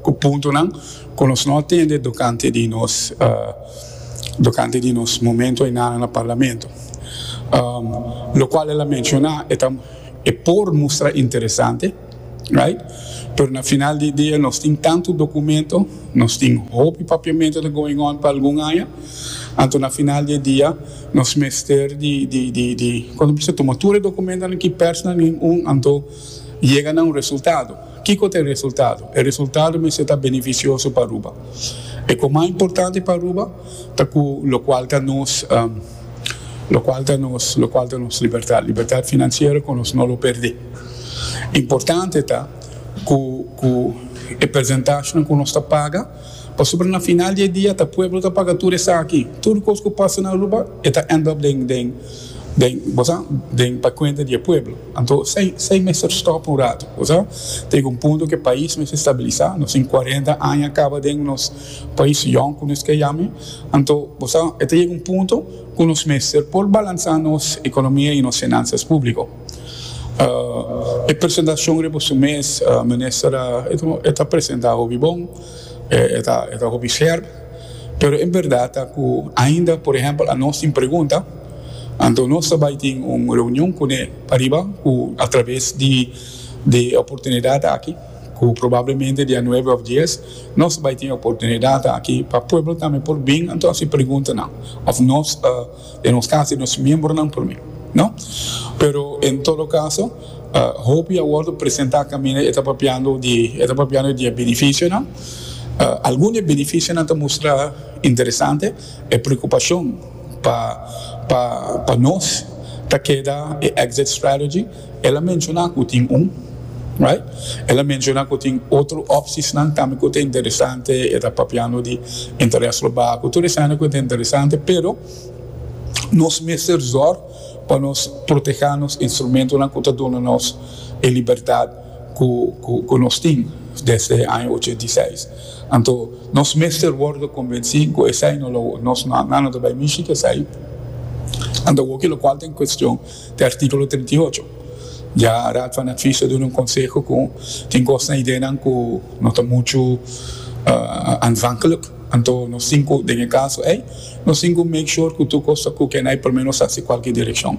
Ku puntonan ku nos no a tende tokante di nos tokante di nos momento enanan na Parlamento, lokual el a menshoná e ta e por mustra interesante, right, pero na final di dia nos tin tantu dokumento, nos tin hopi papiamentu ta going on pa algun aña, anto na final di e dia nos mester di di di di konta prisa tuma tur e dokumentonan ki pèrsnan nin un anto yega na un resultado. Kiko ta e resultado? E resultado mester ta beneficioso pa Aruba. E ku mas importante pa Aruba ta ku lokual ta nos lokual ta nos lokual ta nos libertad, libertad financiero ku nos no lo perdé. Importante ta ku ku e percentashnan ku nos ta paga pasobra na final di e dia ta pueblo ta paga tur esaki. Tur kos ku pasa na Aruba e ta end up den den. den bosa den pa cuenta di e pueblo. Anto esey esey mester stop un rato bosa. Tega un punto cu e pais mester stabilisa. Nos tin cuarenta aña caba den nos pais yong cu nos ta yami. Anto bosa e ta yega un punto cu nos mester por balansa nos economia y nos financias publico. E presentacion riba su mes Minister e ta presenta hopi bon, e ta hopi scherp. Pero e berdad ta cu ainda por ehempel a nos tin pregunta, anto nos ta bay tin un reunion cune ariba cu a traves di e oportunidad aki, cu probablemente dia nuebe of dies, nos ta bay tin e oportunidad aki pa pueblo tambe por bin anto haci preguntanan of nos ta. E nos casi nos miembronan por mi, no? Pero en todo caso, hopi a wordo presenta caminda e ta papiando di, e ta papiando di e beneficionan. Algun di e beneficionan ta mustra interesante, e preocupacion pa, pa, pa nos ta keda e exit strategy, El a menciona cu tin un, right? El a menciona cu tin otro opciesnan tambe cu ta interesante, e ta papiando di interes lo baha cu tur esena cu ta interesante, pero nos mester zor pa nos proteha nos instrumentonan cu ta duna nos e libertad cu nos tin desde e aña ochenta i seis. Anto nos mester wordo convenci cu esai no lo nos, nan no ta bay mishi cu esai, anto awor cu locual ta en cuestion, Te artíkulo trinta i ocho. Ya Raad van Advies a duna un konseho ku tin kosnan, ideanan ku no ta muchu aanvankelijk. Anto nos tin ku, den e kaso ei, nos tin ku make sure ku tur kos ta kukenai promé nos hasi kualke direkshon.